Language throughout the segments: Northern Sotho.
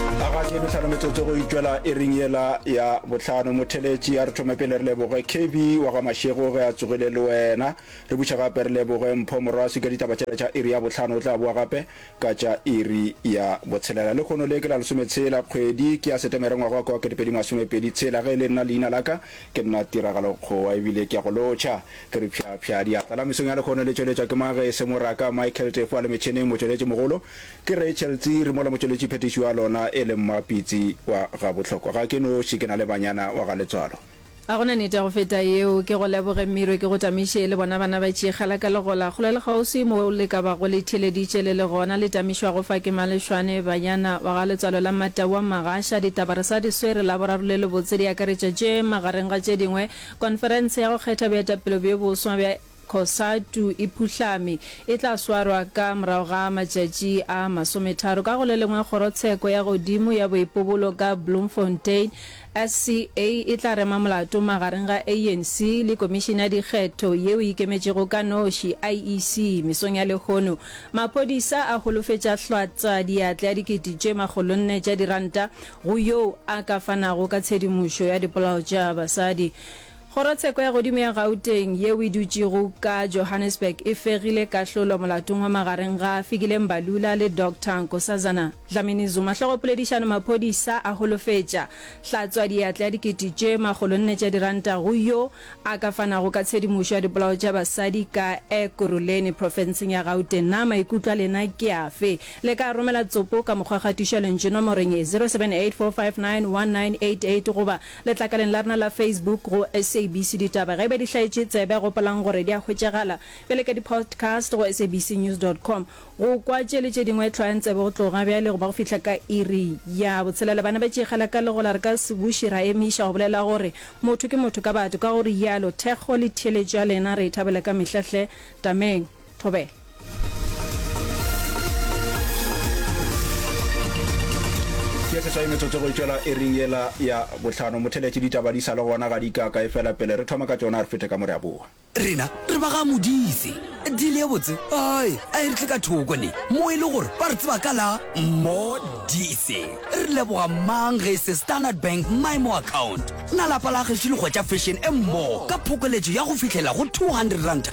a ga ke metlhano metsotso go itšwela e ring yela ya botlhano motheletši a re thome pele re leboge kb wa ga mašego ge a tsogile le wena re buša gape re leboge mpho moraswi ka ditaba tšela tša iri ya botlhano o tla boa gape ka tša iri ya botshelela le kgono le ke la lesometshela kgwedi ke ya setemere ngwaga wa kwa ketepedi masomepedi tshela ge e le nna leina la ka ke nna tiragalo kgowa ebile ke ya go lotšha ke re phyaphya diatla la mesong ya lekgono le tšweletšwa ke mage e se moraka michael tefo a le metšhineng motšweletši mogolo Ke Rachel Tsiri, mola motšweletši phetiši wa lona e le Mma Pitsi wa Gabohlokwa. Ga ke noši, ke na le banyana wa ga Letswalo. Ga go na nete ya go feta yeo. Ke go leboge Mmirwe, ke go tamiše le bona bana ba Tšeegala ka Legola, kgole le kgauswi, mo le ka bago le itheeleditše le le gona. Le tamišwago fa ke Malešwane, banyana wa ga Letswalo la Mmatau wa Mmagasha. Ditaba re sa di swere, la boraro le lebotse di akaretša tše, magareng ga tše dingwe, konferense ya go kgetha boetapele bjo boswa bja. Cosatu e phuhlame, e tla swarwa ka morago ga matšatši a masometharo. Ka go le lengwe, Kgorotsheko ya Godimo ya Boipobolo ka Bloemfontein, SCA, e tla rema molato magareng ga ANC le Komišene ya Dikgetho yeo e ikemetšego ka noši, IEC, mesong ya lehono. Maphodisa a holofetša hlwatswa diatla ya dikete tše makgolo nne tša diranta go yoo a ka fanago ka tshedimošo ya dipolao tša basadi. Kgorotsheko ya godimo ya Gauteng yeo e dutšego ka Johannesburg e fegile kahlolo molatong wa magareng ga Fikile Mbalula le Doctor Nkosazana Dlamini-Zuma. Hlogopoledišano Maphodisa a holofetša hlatswa diatla ya dikete tše makgolo nne tša diranta go yo a ka fanago ka tshedimošo ya dipolao tša basadi ka Ekurhuleni profenseng ya Gauteng. Na maikutlo a lena ke afe? Le ka romela tsopo ka mokgwa ga tušalentšu nomorong ye, 0784591988 goba. Letlakaleng la rena la Facebook go SABC Ditaba ge e ba di hlaetše tsebe, gopolang gore di a hwetšagala bjale ka di-podcast go sabcnews dot com. Go kwa tše le tše dingwe, hlwayang tsebe go tloga bjale go ba go fihla ka iri ya botshelela. Bana ba Tšeegela ka legola re ka se buše ra emiša go bolela gore motho ke motho ka batho, ka go rialo thekgo le theeletšo ya lena re e thabela ka mehla hle. Tameng. Thobela. Ke seswai metsotso go itšwela e ring yela ya bohlano. Motheletše ditaba di sa le gona ga di ka ka e fela pele re thoma ka tšona re fete ka mo re a boa. Rena re ba ga Modise. Deal ye botse ai a e re tle ka thoko ne mo e le gore ba re tseba ka la Modise. Re leboga mang ge e se Standard Bank Maimo Account. Na lapa la Kgeši le hwetša fashion e mmogo ka phokoletšo ya go fihlela go 200 ranta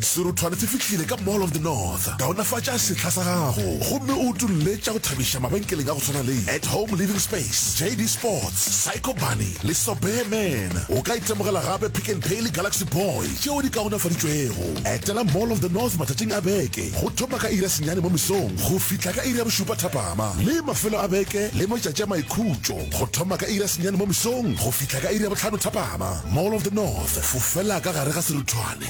Serothwane se fihlile ka Mall of the North. Kaonafatša sehla sa gago gomme o utolle tša go thabiša mabenkeleng a go swana le At Home Living Space, JD Sports, Psycho Bunny le Sobeer Man. O ka itemogela gape Pick n Pay le Galaxy Boy tšeo di kaonafaditšwego. Etela Mall of the North matšatšing a beke go thoma ka iri ya senyane mo mesong go fihla ka iri ya bošupa thapama le mafelo a beke le matšatši a maikhutšo go thoma ka iri ya senyane mo mesong go fihla ka iri ya bohlano thapama. Mall of the North, fofela ka gare ga serothwane.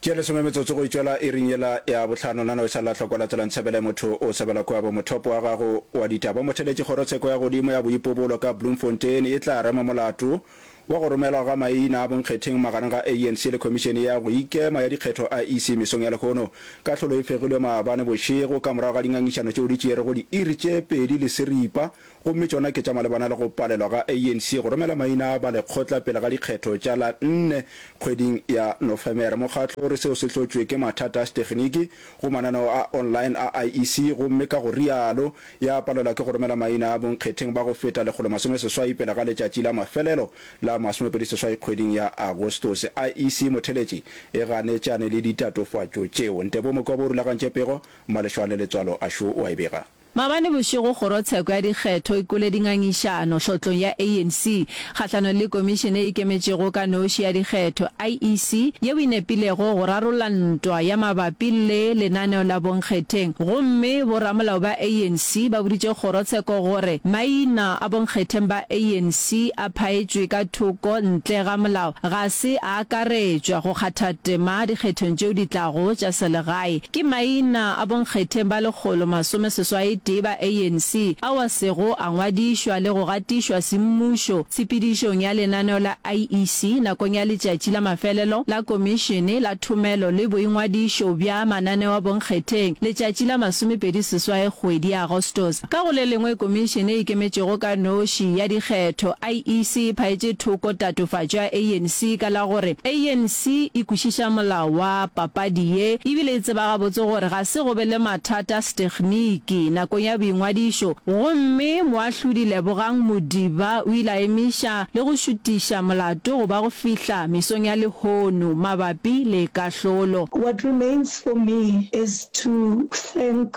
Tše lesome metsotso go itšola iring yela ya bohlano, nana o sa lahlwa kwa latela Ntsebele motho o sebela kua bo mothopo wa gago wa ditaba o mo theletše kgorotsheko ya godimo ya boipobolo ka Bloemfontein e tla rema molato wa go romelwa ga maina a bonkgetheng magareng ga ANC le Khomišene ya go Ikema ya Dikgetho, IEC, mesong ya lehono. Kahlolo e fegilwe maabane bošego ka morago ga dingangišano tšeo di tšeerego diiri tše pedi le seripa gomme tšona ke tša malebana le go palelwa ga ANC go romela maina a ba lekgotla pele ga dikgetho tša la nne kgweding ya Nofemere. Mokgatlo o re seo se hlotšwe ke mathata a seteginiki go mananeo a online a IEC gomme ka go rialo ya palelwa ke go romela maina a bonkgetheng ba go feta lekgolo masome seswai pele ga letšatši la mafelelo la masomepedi seswai kgweding ya Agostose. IEC motheletši e ganetšane le ditatofatšo tšeo. Ntebomoka o bo rulagantše pego, Malešwane Letswalo a šo o a e bega. Maabane bošego kgorotsheko ya dikgetho e kwele dingangišano tlhotlong ya ANC kgahlanong le komišene e ikemetšego ka noši ya dikgetho, IEC, yeo e nepilego go rarolla ntwa ya mabapi le lenaneo la bonkgetheng gomme boramolao ba ANC ba boditše kgorotsheko gore maina a bonkgetheng ba ANC a phaetšwe ka thoko ntle ga molao ga se a akaretšwa go kgatha tema dikgethong tšeo di tlago tša selegae ke maina a bonkgetheng ba lekgolo masome seswai tee ba ANC ao a sego a ngwadišwa le go gatišwa semmušo tshepedišong ya lenaneo la IEC nakong ya letšatši la mafelelo la Komišene la Thomelo le Boingwadišo bja Mananeo a Bonkgetheng letšatši la masomepedi seswai kgwedi ya Agostos Ka go le lengwe, Komišene e Ikemetšego ka Noši ya Dikgetho, IEC, e phaetše thoko tatofatšo ya ANC ka la gore ANC e kwešiša molao wa papadi ye ebile e tseba gabotse gore ga se go be le mathata a setekhniki nakong ya boingwadišo gomme Moahlodi Lebogang Modiba o ile a emiša le go šutiša molato go ba go fihla mesong ya lehono mabapi le kahlolo. What remains for me is to thank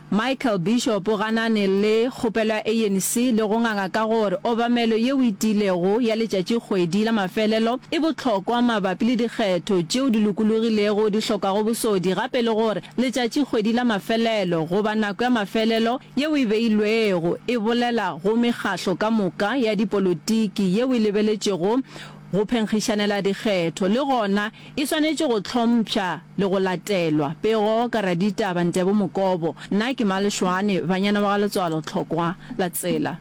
Michael Bishop o ganane le kgopelo ya ANC le go nganga ka gore obamelo yeo e tiilego ya letšatšikgwedi la mafelelo e bohlokwa mabapi le dikgetho tšeo di lokologilego di hlokago bosodi gape le gore letšatšikgwedi la mafelelo goba nako ya mafelelo yeo e beilwego e bolela go mekgahlo ka moka ya dipolotiki yeo e lebeletšego go phenkgišanela dikgetho le gona E swanetše go hlompšha le go latelwa. Pego ka raditaba Ntebo Mokobo, Na ke ma Lešoane, banyana ba ga Letswalo Tlhokwa la tsela.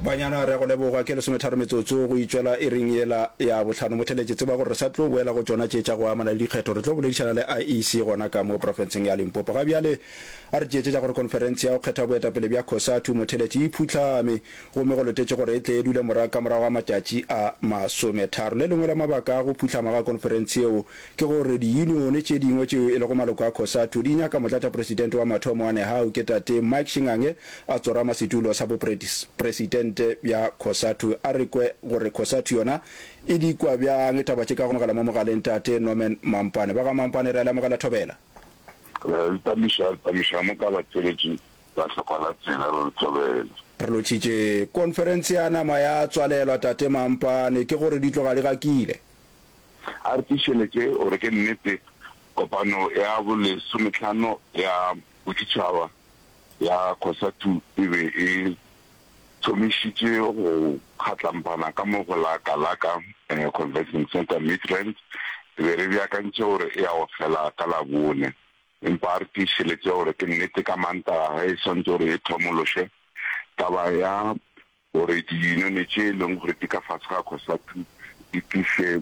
Banyana re a go leboga, ke lesometharo metsotso go itšwela iring yela ya bohlano. Motheletši, tseba gore re sa tlo boela go tšona tše tša go amana le dikgetho. Re tlo boledišana le IEC gona ka mo profenseng ya Limpopo. Ga bjale, A re tšeetše tša gore Konferense ya go Kgetha Boetapele bja Cosatu motheletše e phuhlame, gomme go letetše gore e tle e dule morago ka morago ga matšatši a masometharo. Le lengwe la mabaka a go phuhlama ga Konferense yeo ke gore diyunione tše dingwe tšeo e lego maloko a Cosatu di nyaka Motlatšapresidente wa mathomo wa Nehawu ke Tate Mike Shingange a tsorama setulo sa bopresidente bja Cosatu. A re kwe gore Cosatu yona e di kwa bjang taba tše ka go amogela mo mogaleng Tate Norman Mampane. Ba ga Mampane re a le amogela thobela. Re ntamiša, ntamiša mo ka batšweletši ba hlokwa la tsela, re le thobela. Re lotšhitše khonferense ya nama ya tswalelwa, Tate Mampane, ke gore di tloga di gakile. A re tiišeletše gore ke nnete kopano ya bolesometlhano ya boditšhaba ya Cosatu e be e tšhomišitše go kgatlampana ka mo go la Kalaka Convention Centre Midrand. Re be re beakantšhe gore e ya go fela ka Labone, empa a re tiišeletše gore ke nnete ka Mantaga ge e swantše gore e thomološwe taba ya gore diyunone tše e leng gore di ka fase ga Cosatu di tliše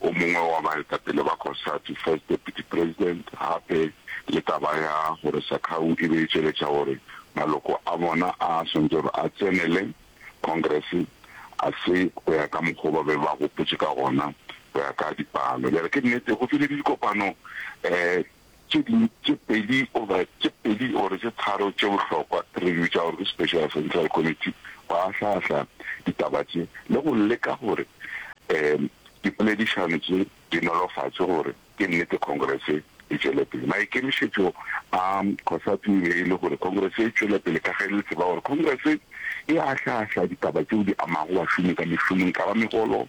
o mongwe wa baetapele ba Cosatu, First Deputy President, gape le taba ya gore Sakhau e be e tšweletša gore maloko a bona a a swanetše gore a tsenele Congress a se go ya ka mokgwa o ba be ba gopotše ka gona go ya ka dipalo. Bjale ke nnete go file le dikopano um Tše dingwe tše pedi goba tše pedi gore tše tharo tše bohlokwa re di bitša gore ke Special Central Committee go ahlaahlaa ditaba tše le go leka gore um dipoledišano tše di nolofatšwe gore ke nnete Congress e tšwele pele. Maikemišetšo a Cosatu e be e le gore Congress e tšwele pele ka ge le tseba gore Congress e ahlaahlaa ditaba tšeo di amago bašomi ka mešomong, e ka ba megolo,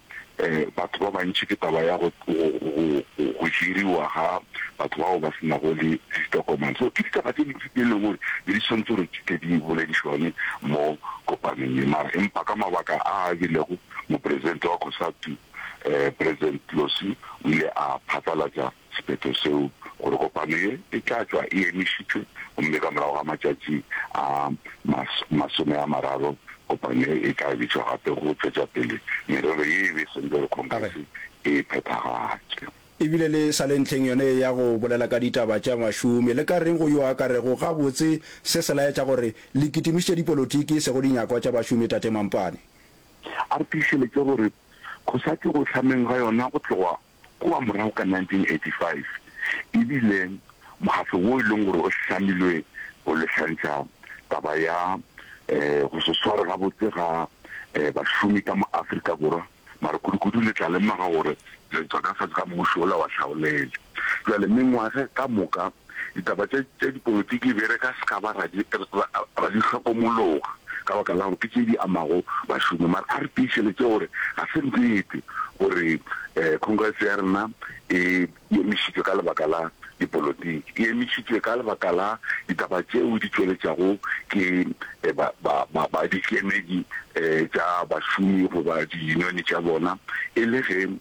batho ba bantši ke taba ya go go hiriwa ga batho bao ba se nago le ditokomane. So ke ditaba tse dintsi tse e leng gore ne di tshwanetse gore di tle di boledišwane mo kopanong ye, mara empa ka mabaka a a bilego mopresidente wa Cosatu, um President Tlossi o ile a phatlalatša Sephetho seo gore kopano ye e tla tšwa e emišitšwe gomme ka morago ga matšatši a masome a mararo kopano ye e tla bitšwa gape go tšwetša pele merero ye e be e swanetše gore Khongrese e e phethagatše. E bile le sa le ntlheng yona ye ya go bolela ka ditaba tša bašomi, le ka reng go yo a ka rego gabotse se se laetša gore le kitimišitše dipolotiki e sego dinyakwa tša bašomi, Tate Mampane? A re tiišeletše gore go sa tšwe go hlameng ga yona go tloga Kua morago ka 1985 e bile mokgatlo wo e lego gore o hlamilwe go lehlantšha taba ya go se sware gabotse ga bašomi ka mo Afrika Borwa, mara kudukudu le tla lemoga gore re ntwa ka fase ga mmušo wola wa hlaolele. Bjale mengwaga ka moka. Ditaba tša, tša dipolotiki be re ka se ka ba ra di, ra, ra di hlokomologa, ka baka la gore ke tše di amago bašomi. Mara a re tiišeletše gore ga se nnete gore um Congress ya rena e, e emišitšwe ka lebaka la dipolotiki. E emišitšwe ka lebaka la ditaba tšeo di tšweletšwago ke ba, ba, ba, ba dikemedi um tša bašomi goba diyunione tša bona, e le ge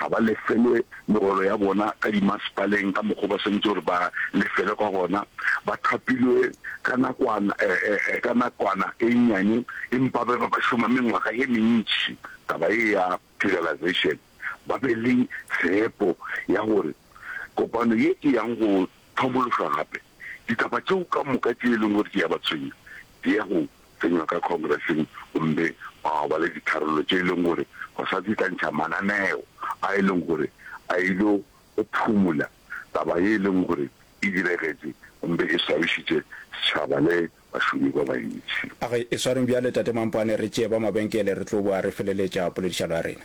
ga ba lefelwe megolo ya bona ka dimasepaleng ka mokgwa o ba swanetše gore ba lefelwe ka gona, ba thapilwe ka nakwana, ee, ka nakwana e nnyane, empa ba be ba šoma mengwaga ye mentši. Taba ye ya Federalization, ba be le tshepo ya gore kopano ye e yang go hlomološwa gape, ditaba tšeo ka moka tše e leng gore di a ba tshwenya di ya go tsenywa ka Khongreseng gomme ba ba le ditharollo tše e lego gore go sa tsetlantšha mananeo a e lego gore a ile go phumola taba ye e lego gore e diregetše gomme e swabišitše setšhaba le bašomi ba bantši. A re, Eswareng bjale, Tate Mampwane, re tšee ba mabenkele, re tlo boa re feleletša poledišano ya rena.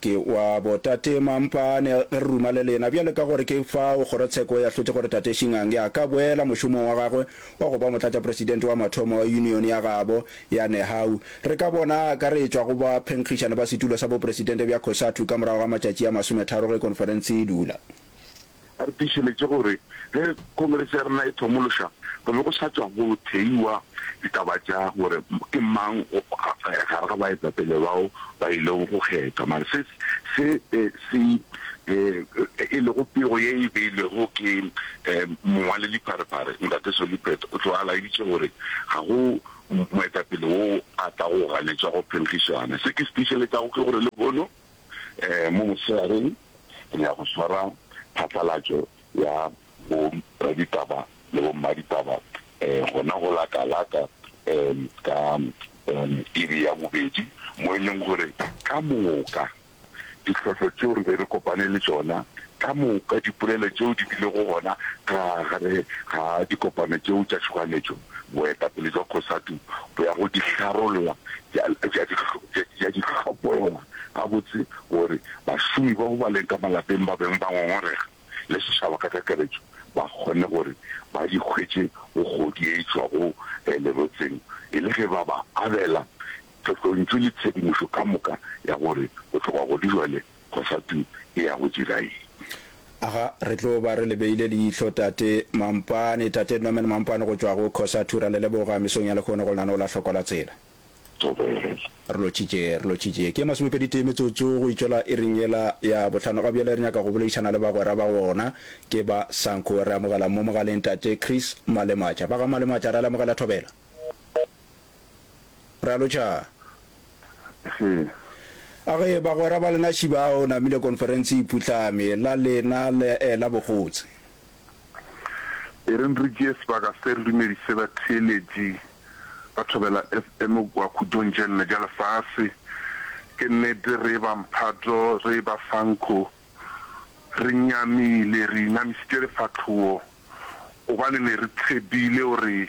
Ke wa botate mampane ge re ruma le lena. Bjale ka gore ke fao kgorotsheko e ahlotše gore Tate Shingange a ka boela mošomong wa gagwe wa go ba motlatšapresidente wa mathomo wa yunione ya gabo ya Nehau, re ka bona a akaretšwa go baphenkgišani ba setulo sa bopresidente bja Cosatu ka morago ga matšatši a masometharo ge khonferense e dula. A re tiišeletše gore ge Khongrese ya rena e thomološa, go be go sa tšwa go theiwa ditaba tša gore ke mang gare ga baetapele bao ba ilego go kgethwa, mare se se se e lego pego ye e beilwego ke Mongwalelipharephare Ntate Solly Pheta. O tloga a laeditše gore ga go moetapele wo a tlago go ganetšwa go phenkgišana. Se ke se tiišeletšago ke gore lehono, Mo mosegareng re ya go swara phatlalatšo ya boraditaba le bommaditaba gona go la Kalaka ka iri ya bobedi, mo e leng gore ka moka ditlhohlo tšeo re be re kopane le tšona, ka moka dipolelo tšeo di bilego gona ka gare ga dikopano tšeo tša tšhoganetšo, boetapele jwa Cosatu bo ya go dihlarolwa tša dihlopolwa gabotse gore bašomi bao ba leng ka malapeng ba beng ba ngongorega le setšhaba ka kakaretšo ba kgone gore ba di hwetše go kgodi e tšwago lerotseng e le ge ba ba abela tlotlontšu le tshedimošo ka moka ya gore bohlokwa godi bjale go fa tuku e ya go dira eng? Aga, re tlo ba re le beile leihlo, Tate Mampane, Tate Norman Mampane go tšwa go Cosatu. Ra le leboga mesong ya lehono go lenaneo la Hloko la Tsela. Thobela. Re lotšitše, re lotšitše. Ke masomepedi tee metsotso go itšola iring yela ya bohlano. Ga bjale re nyaka go boledišana le bagwera ba gona. Ke ba Sanco. Re amogela mo mogaleng Tate Chris Malematša. Ba ga Malematša, ra le amogela. Thobela. Ra lotšha? He. A ge bagwera ba lena Šiba a o namile konferense e putlame, la lena le eh, la bogotse. Ereng re tšee sebaka se re dumedise batheeletši ba Thobela FM kua khutšong tše nne tša lefase. Ke nnete re eba mphato, re eba fankho, re nyamile, re inamisitše lefahlogo gobane ne re tshepile gore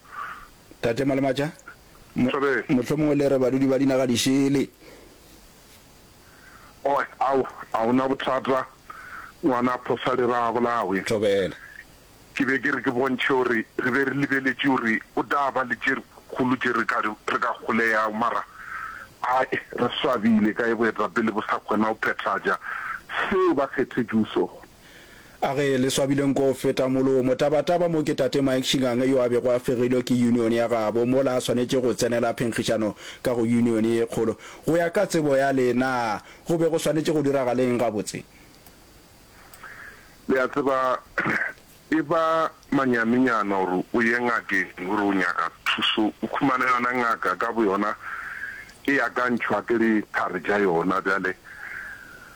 Tate Malematša, mo, mohlomongwe le re badudi ba dinaga dišele. Oe, ao, a o na bothata, ngwana phosa lera a bolawe. Thobela. Ke be ke re ke bontšhe gore re be re lebeletše gore go tla ba le tše kgolo tše re ka, re ka kgoleyago, mara ai, re swabile ka ge boetapele bo sa kgona go phethagatša seo ba kgethetšwego sona. A ge le swabile nko go feta molomo. Tabataba mo ke Tate Mike Shingange yo a bego a fegilwe ke union ya gabo mola a swanetše go tsenela phenkgišano ka go union ye kgolo. Go ya ka tsebo ya le na go be go swanetše go diragaleng gabotse? Le a tseba, e ba manyanenyana gore o ye ngakeng o re o nyaka thuso, o humane yona ngaka ka boyona e akantšhwa ke diphari tša yona. Bjale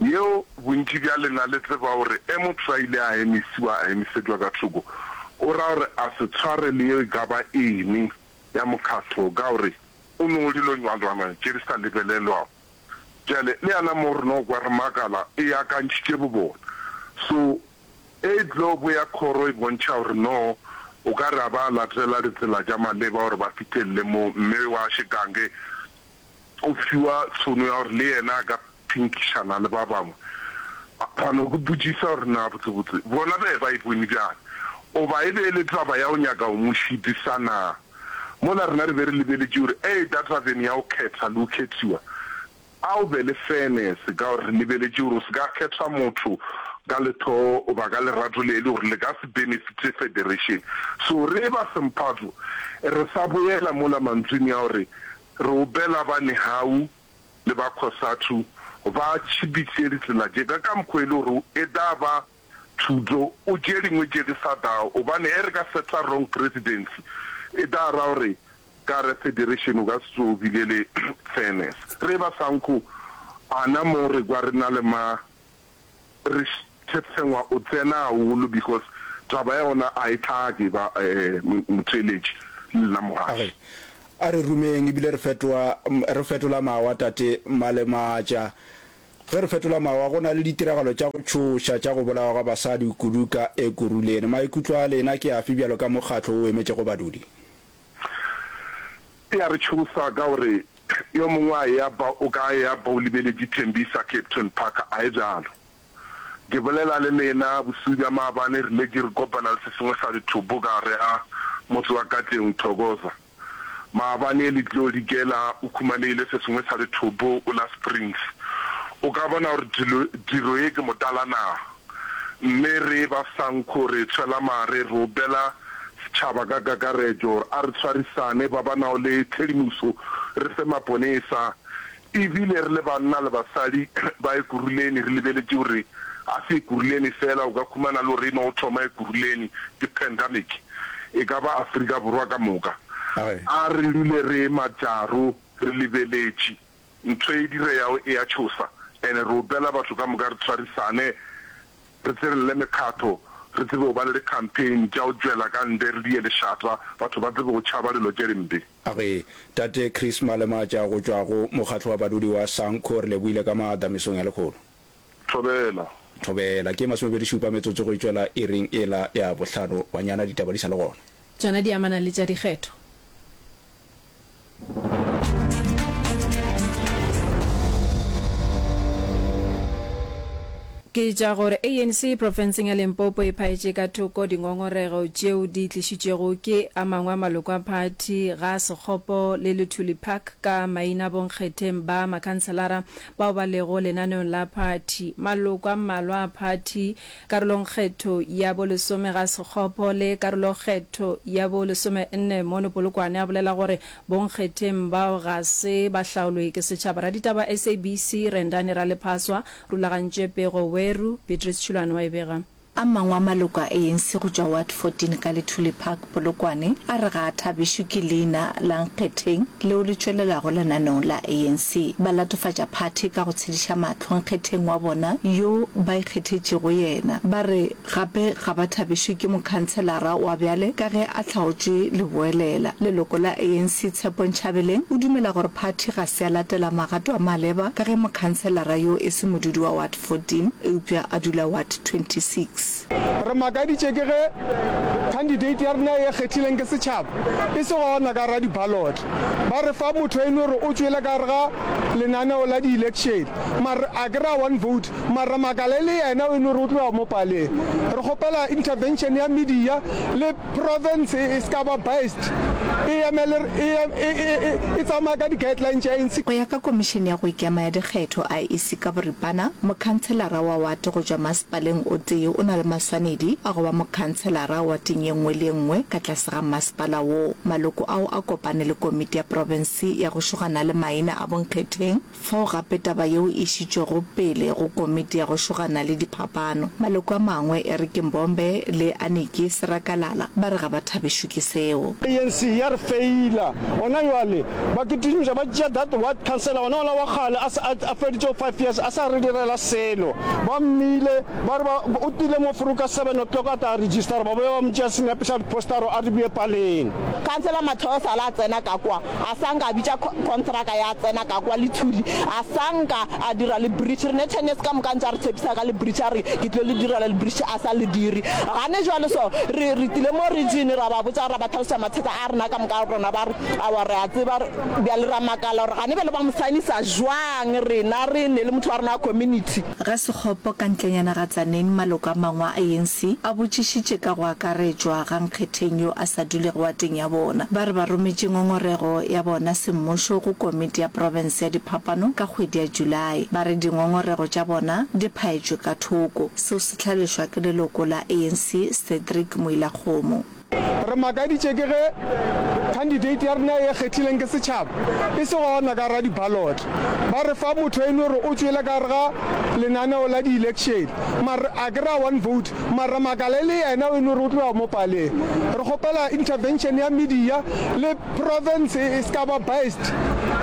yeo bontši bja lena le tseba gore e motho a ile a emisiwa a emisetšwa ka thoko, o ra gore a se tshware le yeo e ka ba eng ya mokgatlo ka gore o no dilo nywanrwana tše di sa lebelelwago. Bjale le yana mo re no kwa re makala e akantšhitše bobona. So e tlo bo ya khoro e bontšha gore no o ka re a ba latela ditsela tša maleba gore ba fihlelele mo mme wa šekange go fiwa tšhono ya gore le yena a ka phinkišana le ba bangwe. Phano ke botšiša gore na botsebotse bona be ba e bone bjang? Goba e be e le taba ya go nyaka go mo šidisa na? Mola rena re be re lebeletše gore a eta tabeng ya go khetha le go khethiwa, a o be le fairness ka gore re lebeletše gore o se ka kgetha motho ka lethoo goba ka lerato le e le gore le ka se benefite federation. So re eba semphato re sa boela mola mantsweng ya gore Reubela ba Nehau le ba Khosathu ba tšhibiše ditsela tše ka ka mokgwa e le gore e da ba thuto o tše dingwe tše di sa da gobane e re ka setla wrong presidency e da ra gore ka re federation o ka se tsoge o bile le fairness re ba sa nkgo ana mo re kwa re na le ma Re Thepsengwa o tsena haholo because taba ya ona a e tlake ba Motšeletši le nna Mogadi. A re rumeng ebile re fetoa re fetola mawa Tate Malematša. Ge re fetola mawa go na le ditiragalo tša go tšhoša tša go bolawa ga basadi kudu ka Ekurhuleni. Maikutlo a lena ke afe bjalo ka mokgatlo o emetšego badudi? E a re tšhosa ka gore yo mongwe a eya ba o ka eya ba o lebeletše Tembisa Capetown Park a e bjalo. Ke bolela le lena bosiu bja maabane re letše re kopana le se sengwe sa dithopo ka gare ga motse wa Katleong Thokoza. Maabane le tlo dikela o khumanegile se sengwe sa dithopo o la Springs. O ka bona gore dilo diro ye ke motala na? Mme re ba Sanku re tshwela mare re opela setšhaba ka kakaretšo gore a re tshwarisane ba ba nago le tshedimoso re fe maponesa e bile re le banna le basadi ba Ekurhuleni re lebeletše gore ga se Ekurhuleni fela o ka khumana le gore e no thoma Ekurhuleni ke pandemic e ka ba Afrika Borwa ka moka a re dule re ema tšaro re lebeletše Ntho e direyago e a tšhosa and re opela batho ka moka re tswarisane re tsenelele mekgatho re tsebe go ba le di-campaign tša go tšwela ka nde re die lešata batho ba tsebe go tšhaba dilo tše dimpe. A re, Tate Chris Malemaatša go tšwa go Mokgatlo wa Badudi wa Sanco, re lebohile ka maatla mesong ya lekgolo. Thobela. Thobela. Ke masomepedi šupa metsotso go e tšwela iring ela ya bohlano. Banyana ditaba di sa le gona. Tšona di amana le tša dikgetho. Ke tša gore ANC profenseng ya Limpopo e phaetše ka thoko dingongorego tšeo di tlišitšwego ke a mangwe a maloko a phathi ga sekgopo le Luthuli Park ka maina bonkgetheng ba makhanselara bao ba lego lenaneong la phathi. Maloko a mmalwa a phathi Karolongkgetho ya bo lesome ga sekgopo le karolokgetho ya bo lesomenne mono Polokwane a bolela gore bonkgetheng bao ga se ba hlaolwe ke setšhaba. Raditaba SABC Rendani Ralephaswa, Rulagantše Pego Weru, Beatrice Tšhulwane wa e bega. A mangwe a maloko a ANC go tšwa Ward 14 ka Lithuli Park Polokwane a re ga a thabišwe ke leina la Nkgetheng leo le tšwelelago lenaneong la ANC. Ba latofatša phathi ka go tshediša mahlo Nkgetheng wa bona yo ba ikgethetšego yena. Ba re gape ga ba thabišwe ke mokhanselara wa bjale ka ge a hlaotšwe leboelela. Leloko la ANC Tshepo Nchabeleng o dumela gore phathi ga se ya latela magato a maleba ka ge mokhanselara yo e se modudi wa Ward 14 eupša a dula Ward 26. Re makaditše ke ge khandidate ya rena e kgethileng ke setšhaba e se gona ka gare ga dibalotle. Ba re fa motho eno gore o tšwele ka gare ga lenaneo la dielekšene mare a ke re a one vote mare re makala e le yena eno gore o tlo ya mo paleng. Re kgopela intervention ya media le Profense e ska ba biased, e emele, e, e, e, e, e tsamaya ka di-guideline tša ANC. Go ya ka Komišene ya go Ikema ya Dikgetho, IEC, ka boripana, mokhanselara wa wate go tšwa masepaleng o tee o na le maswanedi a go ba mokhanselara wateng ye nngwe le ye nngwe ka tlase ga mmasepala woo. Maloko ao a kopane le Komiti ya Profense ya go Šogana le Maina a Bonkgetheng, Fao gape taba yeo e išitšwego pele go Komiti ya go Šogana le Diphapano. Maloko a mangwe, e re ke Mbombe le Aniki Serakalala, ba re ga ba thabišwe ke seo. ANC ya re feila. Gona bjale ba kitišoša, ba tšea that ward councillor, wona ola wa kgale a sa, a feditšego five years a sa re direla selo. Ba mmile, ba re ba, o tlile mo Furu ka seven o'clock a tla registera, ba boya ba mo tšea senepe sa dipostaro a re bue paleng. Councillor Matlhosa la tsena ka kwa, a sa nka a bitša contraka ya tsena ka kwa le thuli a sa nka a dira le bridge re ne ten years ka moka ntse a re tshepisa ka le bridge a re ke tlo le direla le bridge a sa le dire gane jwale so re re tile mo region ra ba botsa ra ba tlhalosa mathata a rena ka moka rona ba re awa re a tseba bjale ra makala gore gane bjale ba mo sainisa jwang rena re ne le motho wa rena wa community Ga Sekgopo ka ntlenyana ga Tzaneen maloko a mangwe a ANC a botšišitše ka go akaretšwa ga Nkgetheng yo a sa dulego wateng ya bona. Ba re ba rometše ngongorego ya bona semmušo go komiti ya profense ya diphapano ka kgwedi ya Julae. Ba re dingongorego tša bona di phaetšwe ka thoko. Seo se hlalošwa ke leloko la ANC Cedric Moilakgomo. Re makaditše ke ge khandidate ya rena e kgethileng ke setšhaba e se gona ka gare ga dibalotle. Ba re fa motho eno gore o tšwele ka gare ga lenaneo la dielekšene mara a kry-a one vote mara re makala e le yena o e no re o tlo ya mo paleng. Re kgopela intervention ya media le province e se ka ba biased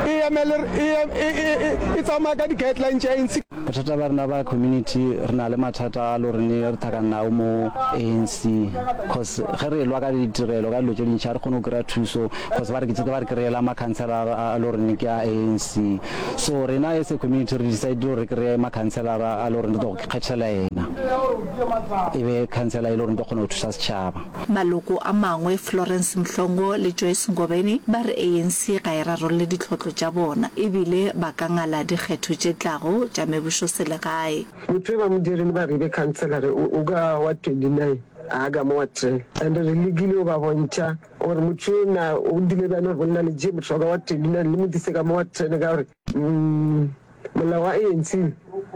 e emele e tsamaya ka di-guideline tša ANC. Bothata ba rena ba community re na le mathata a lo re ne re thakana nao mo ANC cause ge re lwa ka ditirelo ka dilo tše dintšha re kgone go kry-a thuso cause ba re ke ba re kry-ela ma councilor a lo rene ke a ANC so rena as a community re decide gore re kry-e ma councilor a lo rene re tlo go kgethela yena e be councilor e lo rene tlo kgona go thusa setšhaba Maloko a mangwe, Florence Mhlongo le Joyce Ngobeni, ba re ANC ga e rarolle ditlhotlo tša bona e bile ba ka ngala dikgetho tše tlago tša mebošoselegae. Motho yoba modiri le baribe khanselara o ka wa 29 a ka mo wa 10 and re lekile go ba bontšha gore motho yena o dile bane go nna le je motho wa ka wa 29 le mo dise ka mo wa 10 ka gore Molao wa ANC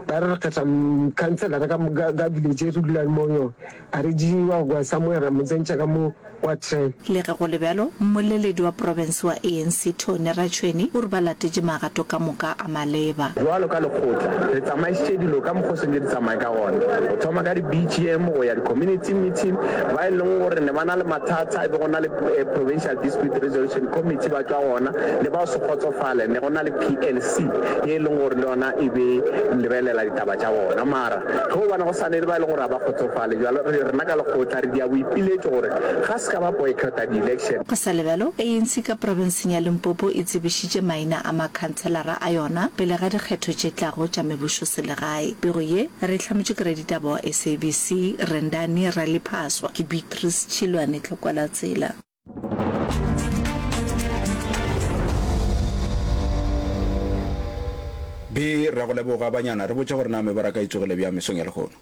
ba re re kgetha khanselara ka moka ka dilo tše re dulang mo yona, a re di wa go kwa somewhere ra mo tsentšha ka mo kwa tren. Le ge go le bjalo, mmoleledi wa profense wa ANC Tony Ratsweni o re ba latetše magato ka moka a maleba. Bjalo ka lekgotla, re tsamaišitše dilo ka mokgwa o swantšego di tsamaye ka gona, go thoma ka di-BGM go ya di-community meeting. Ba e leng gore ne ba na le mathata e be go na le provincial. Dispute Resolution Committee ba tšwa gona le ba se kgotsofale ne go na le PLC ye e leng gore le yona e be lebelela ditaba tša bona mara ge o bona go sa ne le ba e leng gore ga ba kgotsofale jalo re rena ka lekgotla re dia boipiletšo gore ga se ka ba boycotta di-election. Go sa lebalo, ANC ka profenseng ya Limpopo e tsebišitše maina a makhanselara a yona pele ga dikgetho tše tlago tša mebusoselegae. Pego ye re e hlametšwe ke raditaba wa SABC, Rendani Raliphaswa. Ke Beatrice Chilwane Tlhokwalatsela. Be, re a go leboga, banyana. Re botše gore na mebaraka e tsogile bjang mesong ya lehono.